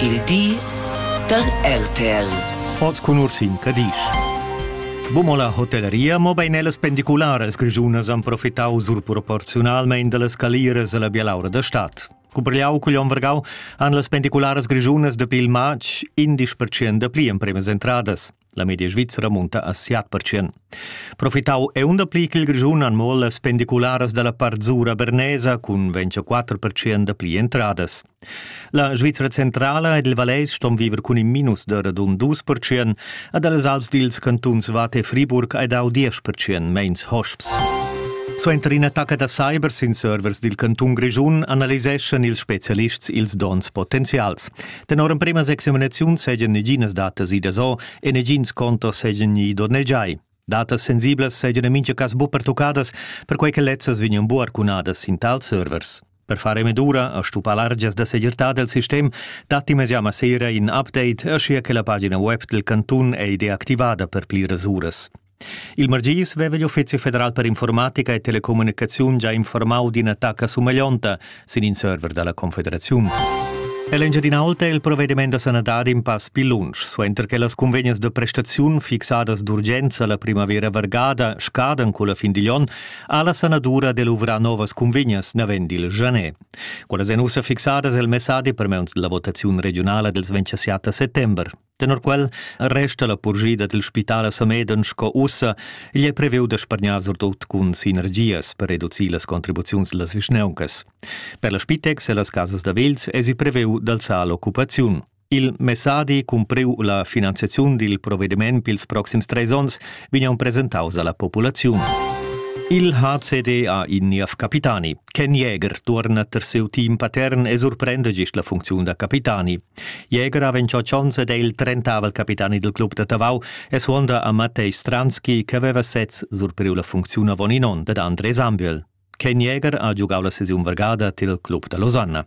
Il di da RTL. Oz cun Ursin Cadisch. Bumo la hotelleria, mobein ellas pendicularas grischunas han profitau surproporziunalmein dallas caliras alla bialaura da stad. Cuprigliau cugl onn vargau han las pendicularas grischunas dapi il matg indisch percent da pli empremas entradas. La media svizra munta a siat percent. Profitau è un pli ch'il Grischun han mo las pendicularas dalla Parzura Bernesa cun 24 percent pli entradas. La Svizra centrala ed il Valeis ston viver cun in minus da radun 2 percent ed las Alps dils cantuns Vate e Friburg hai dau 10 percent meins hosps. Suenter in'attacca da cyber sin servers dil cantun Grischun analiseschan ils spezialists ils donns potenzials. Tenor emprema examinaziun seigien neginas datas idas o e negins contos seigien gni ido nel giai. Datas sensiblas seigien en mincha cas bu pertuccadas, perquei che lezzas vegnan bu arcunadas in tal servers. Per fare medura a stupar largias da segirtà del sistem, datti mesiama sera in update, aschia che la pagina web del cantun è deactivada per pli rasuras. Il margis veva igl Uffizi federal per informatica e telecommunicaziun già informau d'ina tacca sumaglionta sin in server dalla Confederaziun. L'Engiadin'Alta è il provvediment da sanadad in pass più lunsch, suenter che las convegnes de prestaziun fixadas d'urgenza la primavera vargada scadan con la fin digl onn, ha la sanadura de luvrar novas convegnes navend il Janet. Quellas èn ussa fixadas el messadi per meuns della votaziun regionala dels 27 settember. Tenor quel resta la purschida dil spital a Sameden sco ussa. Igl è previu da spargnar surtut cun sinergias per reducir las contribuziuns las vischnauncas. Per la Spitex e las casas da vels esi previu d'alzar l'occupaziun. Il messadi cumpriu la finanziaziun dil provvediment pils proxims treis onns vegnan presentaus alla populaziun. Il HCD ha in niev capitani. Ken Jäger tuorna ter siu team patern e surprenda gist la funcziun da capitani. Jäger ha ventscho Chons ed è il trentavel capitani del club da Tavau e suonda a Mattei Stranski che aveva sez surpriu la funcziun avon in onn dad André Sambiel. Ken Jäger ha giugau la sesiun vargada til club da Losanna.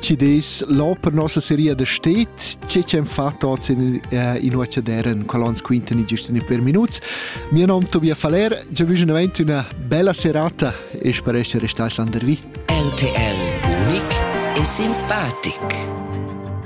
Ci des l'ò per nossa seria da stet, che c'en fatto oz in, uh, in Uacciadera in colons quintani giustini per minuts. Mio nom Tobias Faller, già vige davent una bella serata e spero essere restati landervi. RTL, unic e simpatic.